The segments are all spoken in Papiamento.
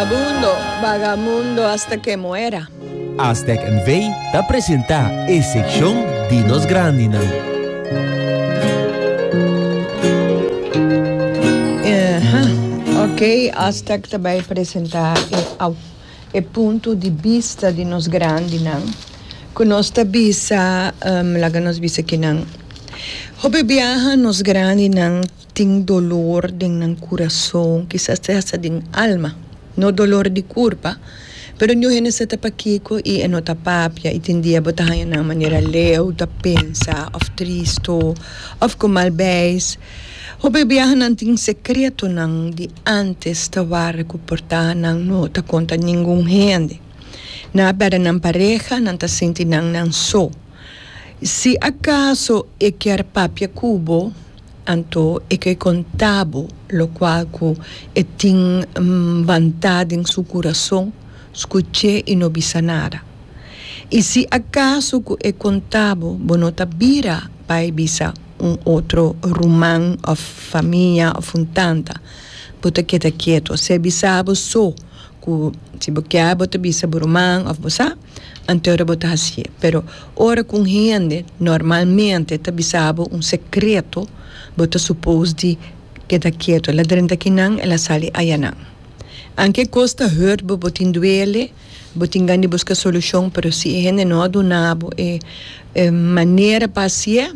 Vagabundo, vagamundo asta ke muera. Aztec NV ta presenta e sekshon di nos grandinan. Ok, Aztec ta bai presenta e au e punto di bista di nos grandinan ku nos ta bisa laga nos bisa kinan. Hopi biaha nos grandinan. Tin dolor den nan kurason, kisas ta hasta den alma. No dolor di kurpa, pero niun hende sa ta pakiko i e no ta papia i tin dia bo ta haña nan manera leu, ta pensa òf tristu òf ku mal beis. Hopi biahanan tin sekretonan di ántes ta warda ku por ta nan no ta konta ningun hende. Nan a pèrdè nan pareha, nan ta sinti nan nan so. Si akaso e kier papia ku bo. Anto e ke konta bo lokual ku e tin banta den su kurason, skuch'é i no bisa nada. I si akaso ku e konta bo, bo no ta bira bai bisa un otro ruman òf famia òf un tanta, bo ta keda ketu. Ser bisa bo so ku si bo kier bo ta bisa bo ruman òf bo sa. Anto ora bo ta hasié. Pero ora ku un hende normalmente ta bisa bo un sekreto, bo ta supos di keda ketu. El a drenta kinan, el a sali ayanan. Aunke e kos ta hurt bo, bo tin duele, bo tin gan di buska solushon, pero si e hende no a duna bo e manera pa hasié,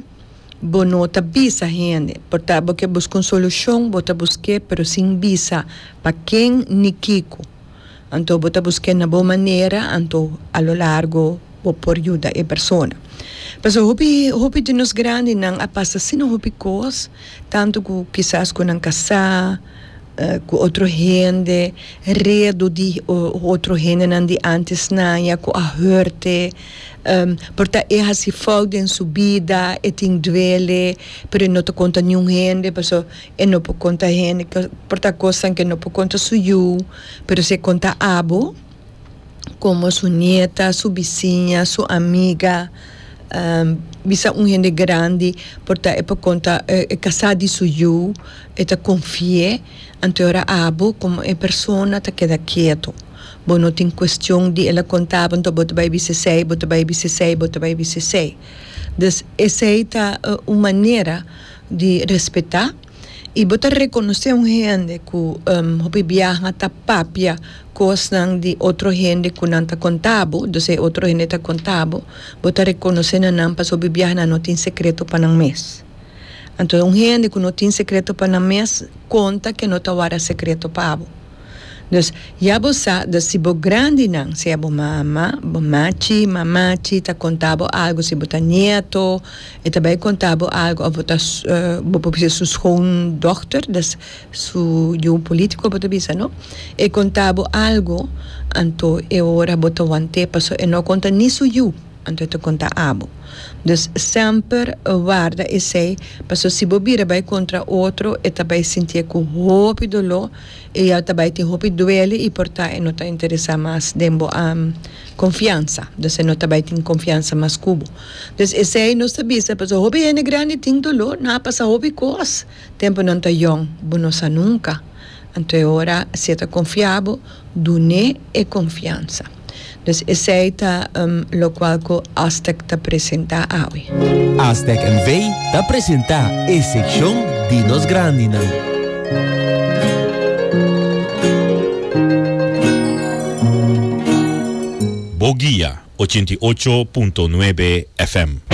bo no ta bisa hende. Por ta bo ke buska un solushon, bo ta busk'é, pero sin bisa pa ken ni kiko. Anto bo ta busqué na bo manera, anto a lo largo bo por yuda e persona. Pasobra hopi hopi di nos grandinan a pasa asina hopi cos, tanto cu kisas cu nan casá, cu otro hende, redo di otro hendenan di antes naña cu a hurt'e, por ta e haci fout den su bida, e tin duele, pero e no ta conta niun hende, pasobra E no por konta hende, por ta kosnan ke no por konta su yu, pero si e konta abo, komo su nieta, su bisiña, su amiga, bisa un hende grandi, por ta e por konta, e ka sa di su yu, e ta konfi'é, anto e ora abo, komo e persona ta keda ketu, bo no tin kuestion di el a konta bo anto bo ta bai bisa esei, bo ta bai bisa esei, bo ta bai bisa esei. Dus esei ta un manera. di respetá i bo ta rekonosé un hende ku hopi biaha ta papia kosnan di otro hende ku nan ta konta bo, dus e otro hende ta konta bo, bo ta rekonosé na nan pasobra hopi biaha nan no tin sekreto pa nan mes. Anto un hende ku no tin sekreto pa nan mes konta ke no ta wara sekreto pa bo. Nos, ya bo sa dat si bo grandinan, sea bo mama, mamachi, mamachi, ta conta bo algo, si bo ta nieto, e ta bay conta bo algo, of bo ta su, bo por bisa su schoondochter, dat is su yu un politico bo ta bisa, no? E conta bo algo, anto e ora bo ta wante, paso e no conta ni su yu, anto e ta conta abo. Dus, semper warda esey, paso si bo bira bay contra otro, e ta bay sintie cu hopi dolor, Eya ta bai tin hopi duele y por ta e no ta interesa mas den bo a confiansa, dus e no ta bai tin confiansa mas cu bo. Dus esey nos ta bisa pasobra hopi hende grandi tin dolor, nan a pasa hopi cos tempo nan ta yong, bo no sa nunca, anto e ora si e ta confia bo, dun'e e confiansa. Dus esei ta lokual ku Aztec ta presentá awe. Aztec NV ta presentá e sekshon di nos grandinan. Bo guia ochenta i ocho punto nuebe FM.